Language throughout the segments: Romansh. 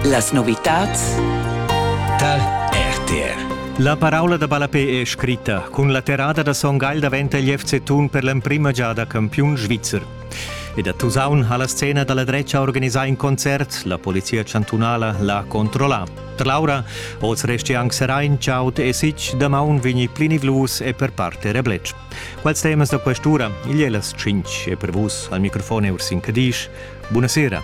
Las novitads tar RTR. La paraula da ballapé è scritta. Cun la terrada da Son Gagl daventa il FC Thun per l'emprima giada campiun svizzer. Ed a Tusaun ha la scena dalla drecha organisà in concert. La polizia chantunala l'ha controllà. Trlaura, oz resti anc Serain, Chaut e Sich, damaun vegni plinivlus e per parte rebletsch. Quals temas da quest'ura? Igl è las 5 e per vus al microfon è Ursin Cadisch. Buonasera.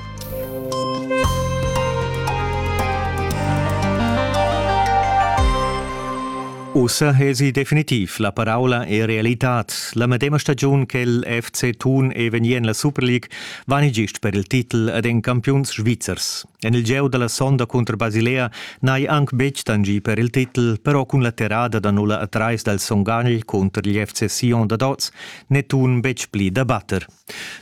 Ussa esi definitiv la paraula e realitad. La medema stagiun che il FC Thun e vegni en la Super League vani gist per il titel ad en campiuns svizzers. En il gieu dalla sonda cunter Basilea n'hai anc betg tangì per il titel, però cun la terrada da nulla a trais dal Son Gagl cunter il FC Sion dad oz n'è Thun betg pli da batter.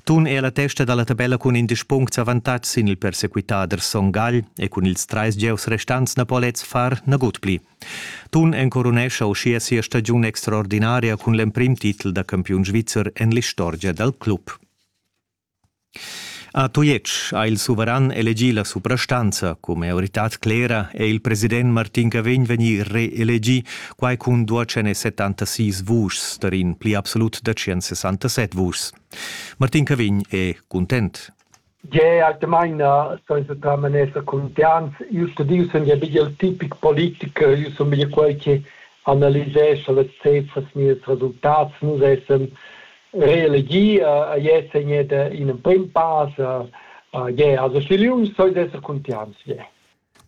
Thun è a la testa da la tabella cun indesch puncts avantatg sin il persequitader Son Gagl e cun ils trais gieus restants na po lez far nagut pli. Thun encorunescha uschia sia stagiun extraordinaria cun l'emprim titel da campiun svizzer en l'istorgia dal club. A Tujetsch ha il suveran elegì la suprastanza. Cun maioritad clera è il president Martin Cavegn vegnì reelegì, quai cun 276 vuschs tar in pli absolut da 167 vuschs. Martin Cavegn è cuntent. Gea, maina seiseta manesa contents. Io sto dir, sun ja bigl tipic politiker, io sun bigl quel che analisescha las cefras, nies resultats. Nus essem reelegia a Jesener in emprim pass je also Schilium soll esser contians je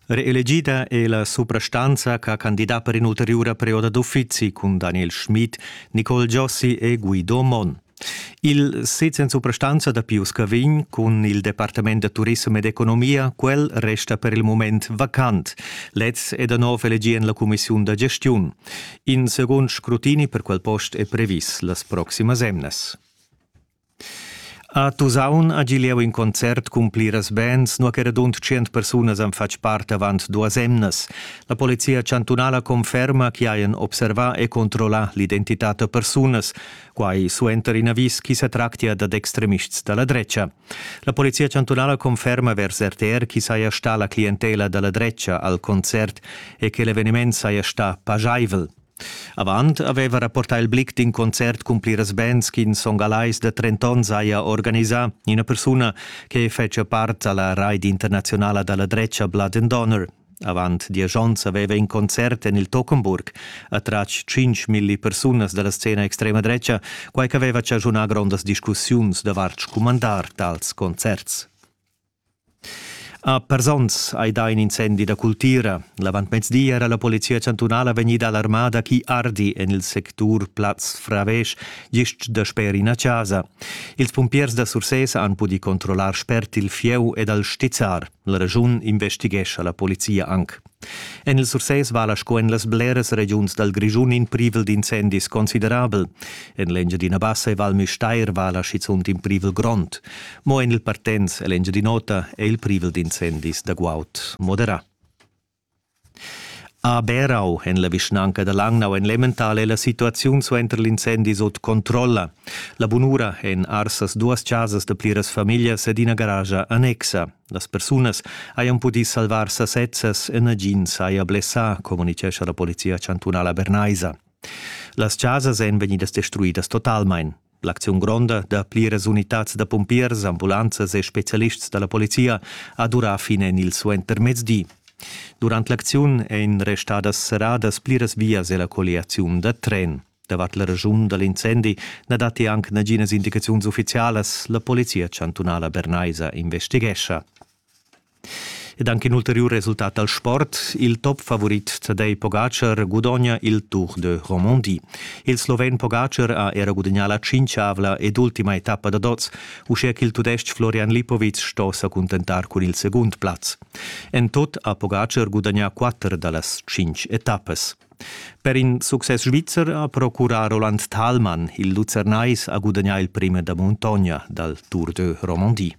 Reelegida è la suprastanza ch'ha candidà per in'ulteriura perioda d'uffizi cun Daniel Schmid, Nicole Giossi e Guido Monn. Il sez en suprastanza da Pius Cavin cun il Departament da turissem ed economia, quel resta per il mument vacant. Lez è da nov elegì en la cumissiun da gestiun. In segund scrutini per quel post è previs las proximas emnas. A Tusaun ha Gileau in concert cun pliras bands, nua che radund 100 persunas han fatg part avant duas emnas. La polizia chantunala conferma che hajan observà e controllà l'identità da persunas, quai suenter in avis ch'i sa tractia dad extremists da la drecha. La polizia chantunala conferma vers RTR chi saja sta la clientela da la drecha al concert e che l'eveniment saja sta pajaivel. Avant aveva rapportà il Blick d'in concert cun pliras bands ch'in songalais da 30 onns haja organisà, ina persuna che fetgia part alla raid internazionala da la drecha Blood and Honor. Avant diesch onns aveva in concert en il Tockenburg attratg tschintgmilli persunas da la scena extrema dretga, quai ch'aveva chaschunà grondas discussiuns davart scumandar tals concerts. A Persons hai dà in incendi da cultira. L'avantmezdi era la polizia chantunala vegnida alarmada ch'i ardi en il sectur Plaz Fravesch gist dasper ina chasa. Ils pumpiers da Sursés han pudì controllar spert il fieu ed al stizzar. La regiun investighescha la polizia anc. En il Sursès vala sco en las bleras regiuns dal Grischun in privel d'incendis considerabel. En l'Engiadina Bassa e Val Müstair vala schizunt in privel grond. Mo en il Partenz e l'Engiadin'Ota è il privel d'incendis da guaud moderà. A Berau en la vischnanca da Langnau en l'Emmental è la situaziun suenter l'incendi sut controlla. La bunura en arsas duas chasas da pliras famiglias ed ina garascha annexa. Las persunas hajan pudì salvar sasezzas e nagins haja blessà, communitgescha la polizia chantunala bernaisa. Las chasas èn vegnidas destruidas totalmain. L'acziun gronda da pliras unitads da pumpiers, ambulanzas e spezialists da la polizia ha durà fin en il suentermezdi. Durant l'acziun èn restadas serradas pliras vias e la colliaziun da tren. Davant la regiun da l'incendi na datti anc naginas indicaziuns uffizialas. La polizia chantunala bernaisa investighescha. Ed anche in ulterior resultat dal sport, il top favorit Tadej Pogacar gudogna il Tour de Romandie. Il sloven Pogacar ha era gudagnà la cinquiavla ed ultima etappa da dots, uschia ch'il tudestg Florian Lipovic sto sa cuntentar cun il segund plaz. En tot ha Pogacar gudagnà quatter da las cinq etappas. Per in success svizzer ha procurà Roland Thalmann. Il Luzernais ha gudagnà il premi da muntogna dal Tour de Romandie.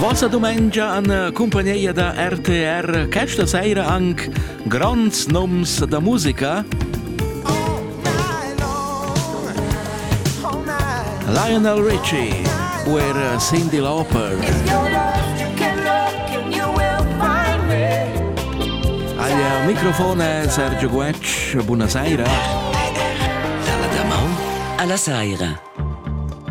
Vossa dumengia an cumpagneia da RTR questa seira anc gronds noms da musica. Lionel Richie u er Cyndi Lauper. Alia al microfon è Sergio Guetg. Buonasera. Alla damaun. Alla saira.